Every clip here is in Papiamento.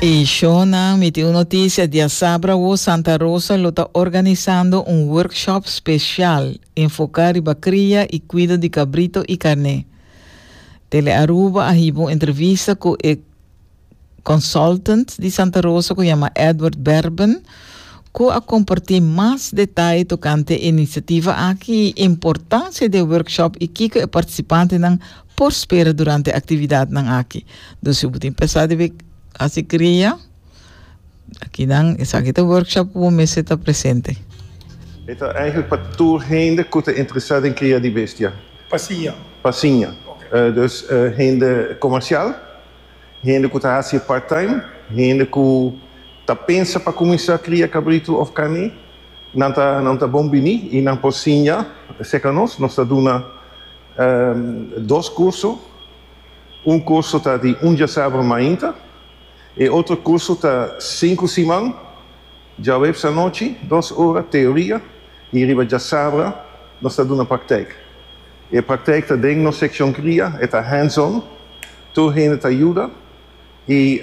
E shownan miti un noticia diasabra wo Santa Rosa lo ta organisando un workshop special enfoca riba cria y cuido di cabrito y carne. Tele Aruba a hiba un entrevista cu e consultant di Santa Rosa cu yama Edward Berben cu a comparti mas detaye tocante e iniciativa aki y importancia di e workshop y kico e participantenan Por spera durante e actividadnan aki. Dor si bo tin pesa di bay haci cria, aki dan, esaki ta workshop cu bo mester ta presente. E ta eigenlijk pa tur hende cu ta interesa den cria di bestia. Pasinha. Pasinha. Dus hende comercial. hende ku ta hasi e part-time, hende ku ta pensa pa kuminsá kria kabritu òf karné, nan ta nan ta bon bini i nan por siña serka nos. Nos ta duna dos kurso. Un kurso ta di un djasabra mainta. E otro kurso ta sinku siman, djaweps anochi dos ora teoria i riba djasabra nos ta duna praktèk. E praktijk ta den nos sekshon kria, e ta hands on, tur hende ta yuda i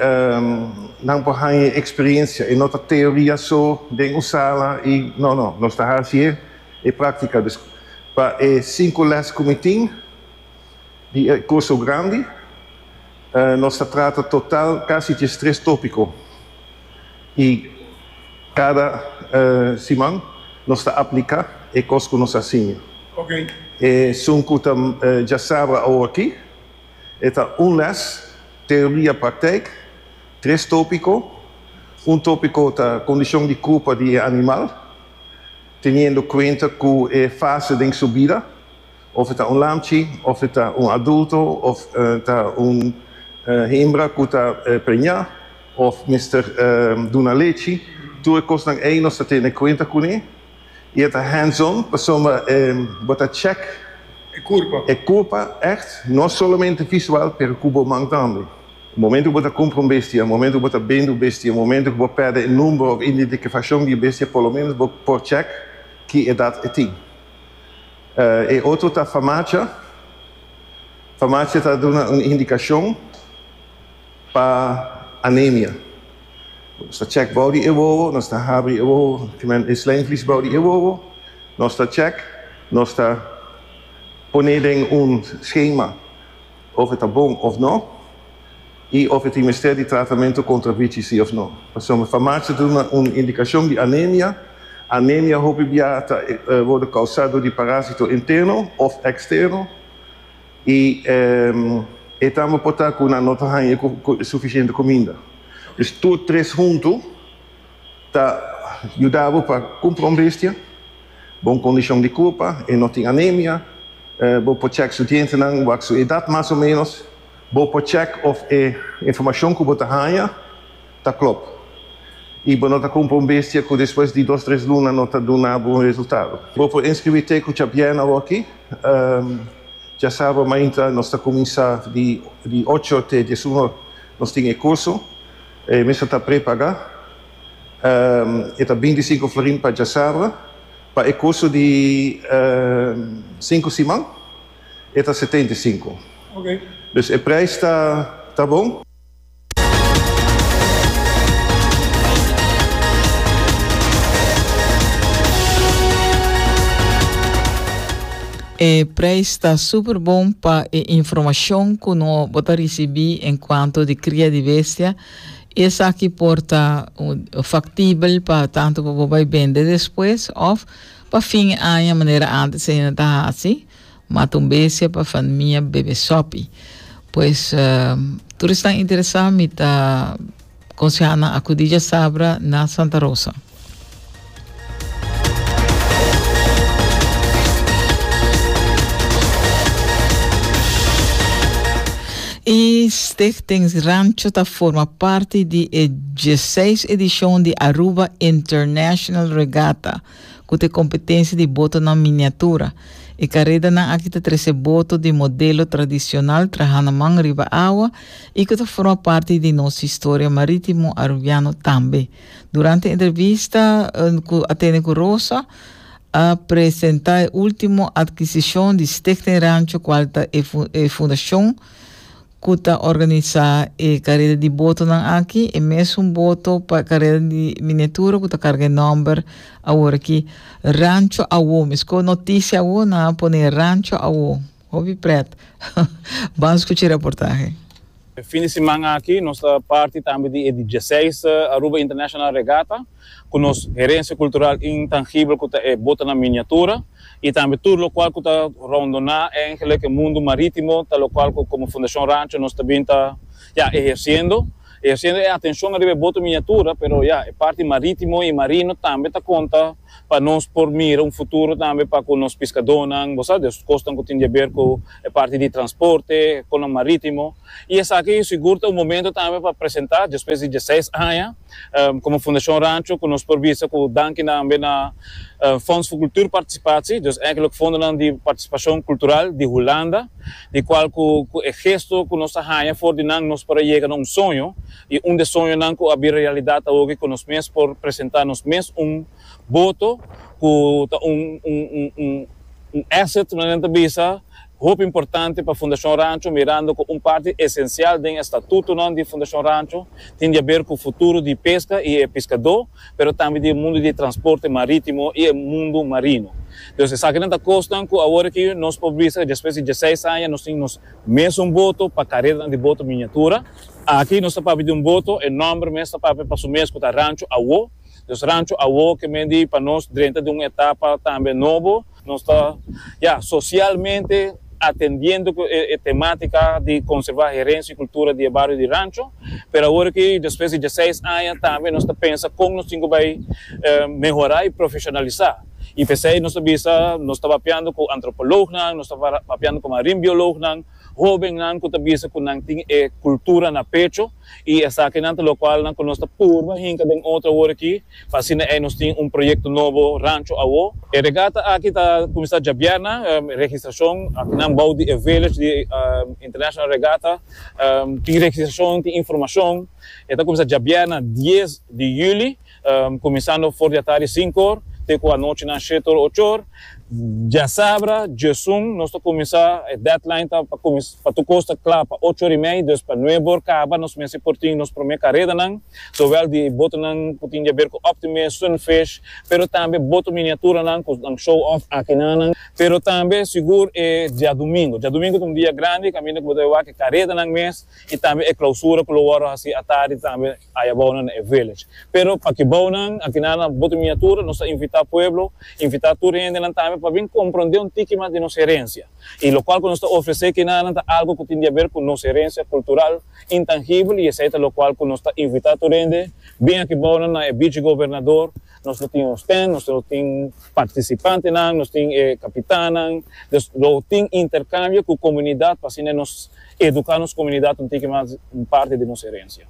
nan por haña e eksperiensia, e no ta teoria so den un sala i no no, nos ta hasi e e praktika. Dus pa e sinku lès ku mi tin di e kurso grandi nos ta trata total kasi djestres tópiko. i cada siman nos ta aplica e cos cu nos a siña. E sun cu ta dja sabra awoki e ta un les Teoria Praktijk, tres topico, un topico ta Condicion di Cupa di e Animal, teniendo cuenta cu e fase den su bida. Of e ta un lamchi, of e ta un adulto, of ta un himbra ku ta preñá, of mester duna lechi, tur e kosnan ei nos ta tene kuenta kuné i e ta hands-on pasobra bo ta chèk e kurpa ègt, no solamente visual pero ku bo man tambe. Momentu ku bo ta kumpra un bestia, momentu ku bo ta bende un bestia, momentu ku bo pèrdè e number òf identikafashon di e bestia por lo menos bo por chèk ki edat e tin. E otro ta farmacia. Farmacia ta duna un indicacion pa anemia. Nos ta check bou di e wowo, nos ta habri e wowo, e slijmvlies bou di e wowo, nos ta check, nos ta pone den un schema. Of e ta bon of no, i of e tin mester di tratamentu kontra bichi si of no. Pasobra mi farmacia duna un indikashon di anemia. Anemia hopi bia ta wòrdu kousá dor di parásito interno òf eksterno, i e tambe por ta ku nan no ta haña ku sufisiente kuminda. Dus tur tres huntu ta yuda bo pa kumpra un bestia. bon kondishon di kurpa i no tin anemia. Bo por chèk su dientenan wak su edat mas o ménos. Bo por chèk òf e informashon ku bo ta haña ta klòp i bo no ta kumpra un bestia ku despues di dos tres luna no ta duna bo un resultado. Bo por inskribí te ku Chabiana awòkí. Dja sábado mainta nos ta kuminsá di ocho te dies un or. Nos tin e kurso. E mester ta prepagá. e ta binti sinku florin pa djasabra, pa e kursu di sinku siman e ta setenta i sinku. Dus e preis ta bon. E preis ta super bon pa e informashon ku no bo ta risibí enkuanto di kria di bestia. Esaki por ta faktibel pa tantu pa bo bai bende despues òf pa fin e aña manera antes Ena ta hasi, mata un bestia pa fanmia bebe sòpi. Pues tur esnan interesá mi ta konsehá nan akudí djasabra na Santa Rosa. E Stichting Rancho ta forma parti di e 16 edishon di Aruba International Regatta, ku ta e kompetensia di botonan miniatura. E karedanan aki ta trese boto di modelo tradishonal trahana man riba awa i ku ta forma parti di nos historia marítimo Arubiano tambe. Durante e entrevista cu a tene cu Rosa, a presenta e ultimo adquisicion di Stichting Rancho cual ta e, e fundacion cu ta organisa e careda di botonan aki, e mesun boto pa careda di miniatura cu ta carga e nomber awor aki, Rancho Awo. Mes cu noticia awo nan a pone Rancho Awo. Hopi pret. Ban scuchi e reportahe. E fin di siman aki nos ta parti tambe di e dieciseis Aruba International Regatta cu nos herencia cultural intangibel cu ta e botanan miniatura y tambe tur locual cu ta rondona eingelijk e mundo maritimo ta locual cu como Fundacion Rancho nos ta bin ta ya eherciendo eherciendo e atencion riba e boto miniatura pero ya e parti maritimo y marino tambe ta conta pa nos por mira un futuro tambe pa cu nos piscadónan, bo sa, di e cosnan cu tin di haber cu e parti di transporte, e conan marítimo. Y esaki yo sigur ta un momento tambe pa presenta, despues di diesseis aña, como Fundacion Rancho, cu nos por bisa cu danki tambe na Fonds voor Cultuurparticipatie, dus eigenlijk fondonan di participacion cultural di Hulanda, di cual cu e gesto cu nos ta haña for di nan nos por a yega na un soño, I un de soñonan ku a bin realidat awoki ku nos mes por presentá nos mes un boto ku ta un un asset manera nan ta bisa hopi importante pa Fundashon Rancho mirando ku un parti esensial den e statutonan di Fundashon Rancho tin di haber ku futuro di peska i e piskadó pero tambe di e mundu di transporte marítimo i e mundu marino. Entonces esakinan ta kosnan ku awor aki nos por bisa despues di diesseis aña nos tin nos mes un boto pa kareranan di boto miniatura. Aki nos ta papia di un boto, e nòmber mes ta papia pa su mes ku ta Rancho Awó. Nos Rancho Awó keme di pa nos drenta di un etapa tambe nobo. Nos ta, ya, sosialmente atendiendo ku e temátika di konservá herensia i kultura di e bario di Rancho. Pero awor aki, despues di diaseis aña, tambe nos ta pensa kon nos tin ku bai mehorá i profeshonalisá. I p'esei nos ta bisa nos ta papiando ku antropològnan, nos ta papiando ku marin biològnan. Hobennan ku ta bisa ku nan tin e kultura na pecho i esakinan ta lokual nan ku nos ta purba hinka den otro awor aki pa asina ei nos tin un proyekto nobo rancho awó. E regata aki ta kuminsá djabièrna. Registrashon aki nan bou di e village di International Regatta tin registrashon, tin informashon. E ta kuminsá djabièrna dies di yüli. Kuminsando for di atari sinkor te ku anochi nan shetor ochor. Diasabra, Diesun, nos ta kuminsá, e deadline ta pa kuminsá pa tur kos ta kla pa ocho or i mei, dus pa nuebe or kaba nos mester por tin nos promé karedanan, zowel di botonan ku tin di aber ku Optimist, Sunfish, pero tambe boto miniaturanan ku nan show off aki nan nan. Pero tambe sigur e diadumingu. Diadumingu ta un dia grandi kaminda ku bo ta wak e karedanan mes y tambe e clausura cu lo worde haci atardi tambe aya bao nan na e village. Pero pa ki bao nan aki nan na Bote Miniatura nos a invita pueblo, invita tur hende nan tambe pa bin compronde un tiki mas di nos herencia. Y locual cu nos ta ofrece kinan nan ta algo cu tin di haber cu nos herencia cultural intangibel y esey ta locual cu nos ta invita tur hende, bin aki bao nan na e Beach Gobernador, Nos lo tin nos ten, nos lo tin participantenan, nos tin e capitannan, dus lo tin intercambio cu comunidad pa asina nos educa nos comunidad un tiki mas, un parti di nos herencia.